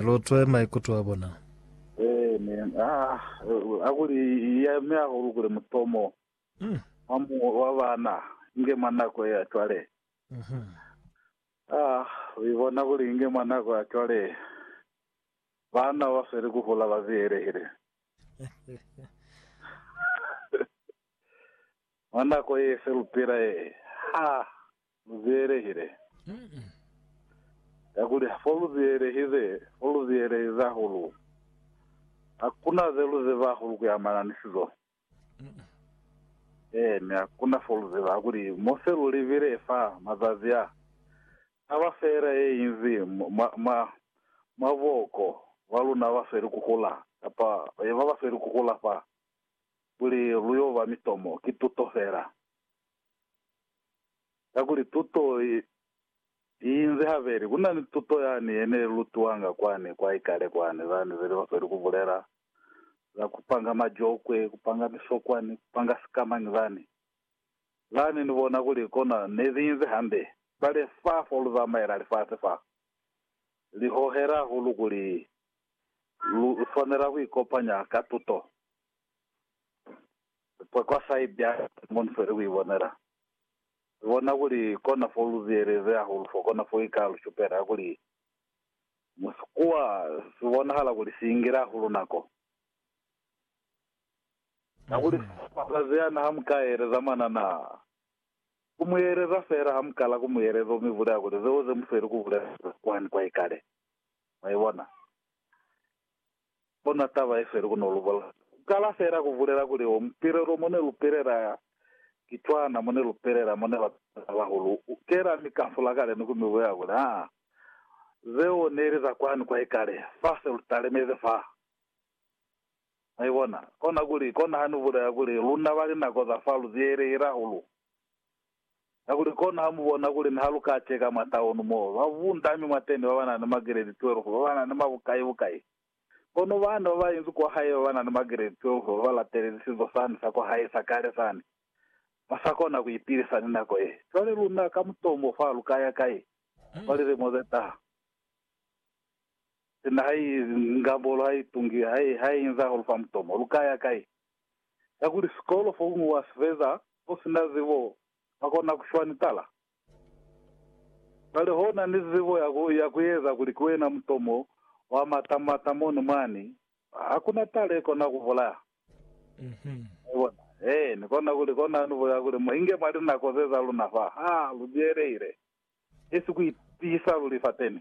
Lutwe maikuto a bona. Amen haa akuli iya mi hahulu kuli mutomo wa mu wa bana inge mwa nako ya cwale haa wi bona kuli inge mwa nako ya cwale bana ba sweli ku hula ba ziyelehile mwa nako ye se lupila ye haa. Lu ziyelehile. Kakuli fo lu ziyelehize, fo lu ziyelehize hahulu. Hakuna ze lu ziba hahulu kuamana ni sizo. Ee, mi hakuna fo lu ziba kakuli mo se lu libile fa mazazi a, taba fela ye inzi mwa, mwa, mwa booko ba luna ba sweli kuhula, kapa ba ba sweli kuhula fa, kuli lu yo ba mitomo, ki tuto fela. kakuli tuto i inzi habeli. Ku na ni tuto yani ye ne lutiwanga kwani kwa ikale kwani, lani ze li ofeli ku bulela za ku panga majokwe, ku panga misokwani, ku panga sikamañi lani. Lani ni bona kuli kona ne li inzi hande. Cwale fa fo lu zamaela lifasi fa li hohela hahulu kuli lu swanela ku ikopanya ka tuto. Lipwakwa sa i bya Simoni fo ili ku i bonela. Lu bona kuli kona fo lu ziyelezi hahulu fo kona fo i ka lu shupela kuli musikuwa si bonahala kuli si ingile hahulu nako, kakuli mazazi ana ha mu ka yeleza mwana na ku mu yeleza fela ha mu kala ku mu yeleza u mi bulela kuli zeo ze mu sweli ku bulela kwani kwa ikale. Mwa ibona? Kono taba ye feli kono lu bolela. Ku kala fela ku bulela kuli wo mupilelo mo ne lu pilela ki cwana mo ne lu pilela mo ne ba pilela bahulu. U kela mi ka fula kale ni ku mi bulela kuli, Haa, zeo ne li za kwani kwa ikale, fa se lu talemezi fa. Mwa ibona? Kona kuli, kona ha ni bulela kuli, luna ba linako za fa lu ziyelehile hahulu. Kakuli kono ha mu bona kuli ni ha lu ka ceka mwa taunu mo ba bundami mwa teni ba ba na ni magiredi 12 ba ba na ni mabukai-bukai, kono bana ba ba inzi kwa hae ba ba na ni magiredi 12 ba ba latelezi sizo sani sa kwa hae sa kale sani, ba sa kona ku ipilisa ni nako ye. Cwale luna ka mutomo fa lu ka ya kai kwa lilimo ze taha? Sina ha i, Ngambolo ha i tungi, ha i, ha i inza hahulu fa mutomo, lu ka ya kai? kakuli sikolo fokuñwi wa si feza u si na zibo wa kona ku shwa ni tala. Cwale ho na ni zibo ya ku, ya ku eza kuli ki wena mutomo wa mata mata moni mwani, ha ku na tala i kona ku bulaya. Mwa bona? Ee, Ni kona ku li kona ni bulela kuli mu inge mwa linako ze za luna fa, ha lu byelehile, esi ku itiisa luli fateni.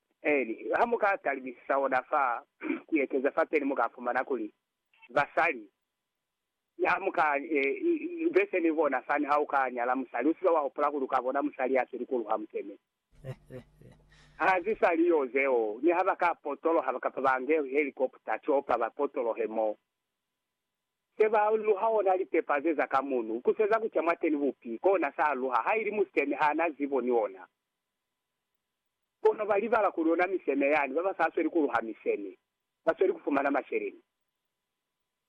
Peli ha mu ka talibisisa ona fa ku ekeza fa peli, mu ka fumana kuli basali ha mu ka be se ni bona fani, ha u ka nyala musali, u si ke wa hupula kuli u ka bona musali ya si likulu ha mu kene. Ha zi sa li yo zeo, ni ha ba ka potoloha kapa ba nge helikopta ki opa ba potolohe mo se ba luha ona lipepa ze za ka munu, ku seza ku ca mwateni bupi kona sa luha, ha ili musiteni ha na zibo ni ona. Kono ba libala kuli ona miseme yani, ba ba sa sweli ku luha miseme, ba sweli ku fumana masheleni.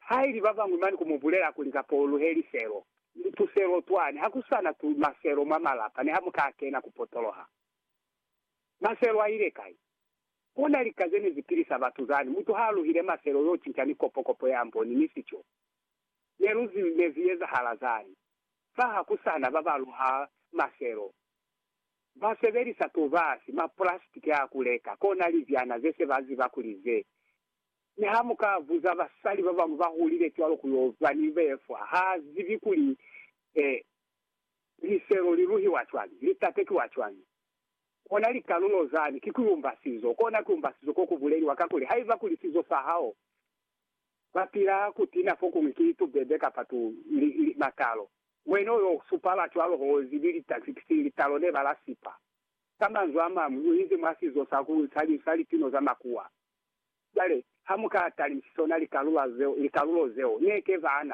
Haili ba bañwi mane ku mu bulela kuli, Kapa u luhe liselo, ni tuselo twani, ha ku sa na tu, maselo mwa malapa, ne ha mu ka kena ku potoloha. Maselo a ile kai? Kona lika ze ne zi pilisa batu zani. Mutu ha a luhile maselo, yo cinca ni kopo, kopo ya mboni, ni sico. Ne lu zi, ne zi ezahala zani. Fa ha ku sa na ba ba luha maselo, Ba sebelisa tobasi, mapulasitiki a ku leka, kona libyana ze se ba ziba kuli ze. Mi ha mu ka buza basali ba bañwi ba hulile cwalo ku yo ba ni befwa, ha zibi kuli, eh, liselo li luhiwa cwañi, li tatekiwa cwañi, kona likalulo zani, ki ku umba sizo, kona ku umba sizo ko ku buleliwa. Kakuli, haiba kuli sizo sa hao, ba pila ku tina fokuñwi ki tubebe kapa tu, li, li, matalo. Wena uyo supala cwalo hozi ni litakisi litalo ne ba la sipa. Ka manzwi a mañwi, u inzi mwa sizo sa ku nsa linzwi sa lipino za makuwa. Cwale, ha mu ka talisiso na likalulo zeo, ne ke ba na.